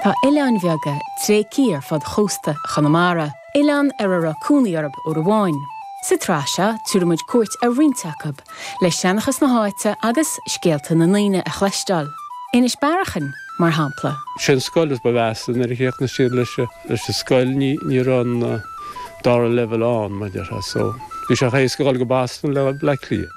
Tá oileáin bheaga tréigthe ar fud chósta Chonamara, oileáin ar a raibh cónaí orthu uair amháin. Sa tsraith seo, tabharfaidh muid cuairt ar roinnt acu, le seanchas na háite agus scéalta na ndaoine a chloisteáil, Inis Bearachain, mar shampla. Sé an scoil is ba mheasa nuair a chríochnaigh siad leis an scoil ní raibh an dara leibhéal ann, mar déarfá, so bhí sé éasca a dhul go Boston ná Bleá Cliath.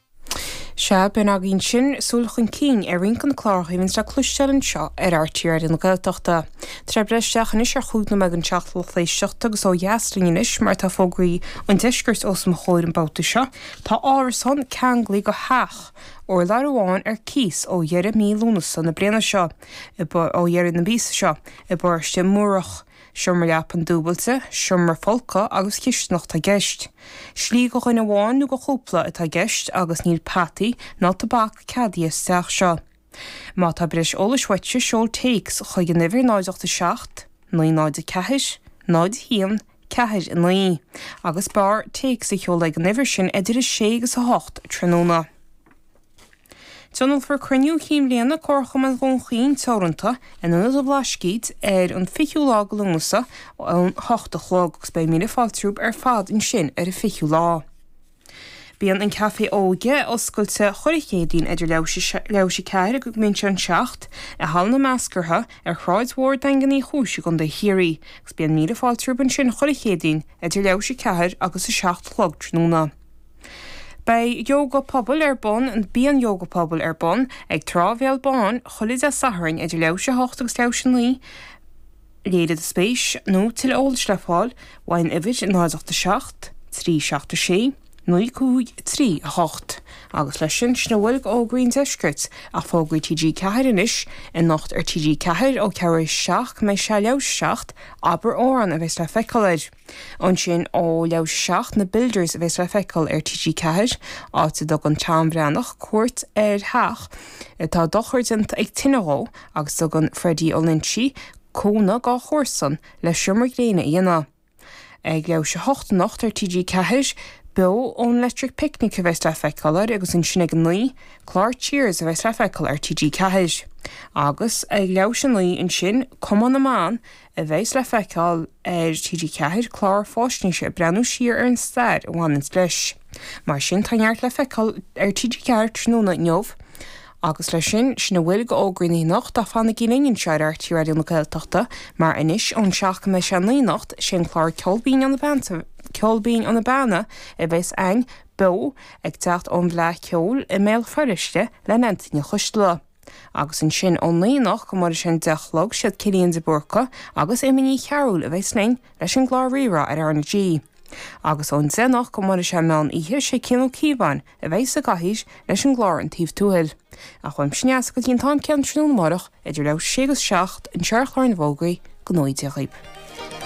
Sea, b'in againn sin, súil chun cinn ar roinnt de na cláracha a bhíonns le cloisteáil anseo ar RTÉ Raidió na Gaeltachta. Tá muid ag breith isteach anois ar chúig nóiméad don seacht, a lucht éisteachta agus ó dheas linn anois mar tá fógraí an deiscirt os mo chomhair an babhta seo. Tá árasán ceanglaí go theach urláir amháin ar cíos ó dheireadh mhí Lúnasa na bliana seo, ó dheireadh na míosa seo, i bParóiste Múrach, Seomra leapan dúbailte, seomra folctha agus cistineach atá i gceist. Slí go dhuine amháin nó go chúpla atá i gceist agus níl peataí ná tobac ceadaithe sa teach seo. Má tá breis eolais uaitse seol téacs ag an uimhir 087 904 01 49 agus b'fhearr téacs a sheoladh ag an uimhir sin idir 6 agus 8 tráthnóna. Tionólfar Cruinniú Chinn Bhliana Comharchumann Dhún Chaoin Teoranta in Ionad an Bhlascaoid ar an 20ú lá de Lúnasa ón hocht a chlog agus beidh míle fáilte romhaibh ar fad ansin ar an 20ú lá. Bíonn an Café Óige oscailte chuile Chéadaoin idir leath théis a ceathair go mbíonn sé an seacht i Halla na Meascartha ar Shráid Mhór Daingean Uí Chúis i gContae Chiarraí agus bíonn míle fáilte romhaibh ansin chuile Chéadaoin idir leath théis a ceathair agus a seacht a chlog tráthnóna. Beidh Ióga Pobail ar bun, Bíonn Ióga Pobail ar bun ag Trá Bhéal Bán chuile Dé Sathairn idir leath théis 8 agus leath théis 9. Léirigh do spéis nó tuilleadh eolais le fáil ón uimhir 087 376 9538 agus leis sin sin a bhfuil go fhógraí an deiscirt ach fógraí TG4 anois anocht ar TG4 ó cheathrú théis 7 go mbeidh sé leath théis 7 Abair Amhrán a bheas le feiceáil ar Ansin ó leath théis a seacht na Builders a bheas le feiceáil ar TG4, áit a dtugann Tom Breathnach cuairt ar theach atá dochar déanta ag tine dhó agus tugann Freddie Ó Loinsigh cúnamh dá chomharsan le seomra gréine a dhéanamh. Ag leath théis a hocht anocht ar TG4, beo ón Electric Picnic a bheas le feiceáil air agus ansin ag a naoi, clár Cheers a bheas le feiceáil ar TG4. Agus ag leath théis a naoi ansin, Cumann na mBan a bheas le feiceáil ar TG4, clár fáisnéise ag breathnú siar ar an stair a bhaineanns leis. Mar sin, tá neart le feiceáil ar TG4 tráthnóna inniu. Agus leis sin, sin a bhfuil go fhógraí inniu ach fanaigí linn anseo ar RTÉ Raidió na Gaeltachta mar anois ón 7 go mbeidh sé an 9 anocht, sé an clár Ceol Binn ó na Beanna, Ceol Binn ó na Beanna a bheas againn beo ag teacht ón bhFleadh Cheoil i mBéal Feirste le Neansaí Ní Choisdealbha. Agus ansin ó naoi anocht go mbeidh sé an deich a chlog, siad Cillian de Búrca agus Éimear Ní Chearúil a bheas linn leis an gclár RíRá ar R na G. Agus ón deich anocht go mbeidh sé an meán oíche, sé Cian Ó Cíobháin a bheas sa gcathaoir leis an gclár An Taobh Tuathail. Ach uaimse Neasa go dtí an t-am céanna tráthnóna amárach idir leathuair tar éis a sé agus seacht, anseo ar Chlár na bhFógraí, go ngnóthaí Dia dhaoib.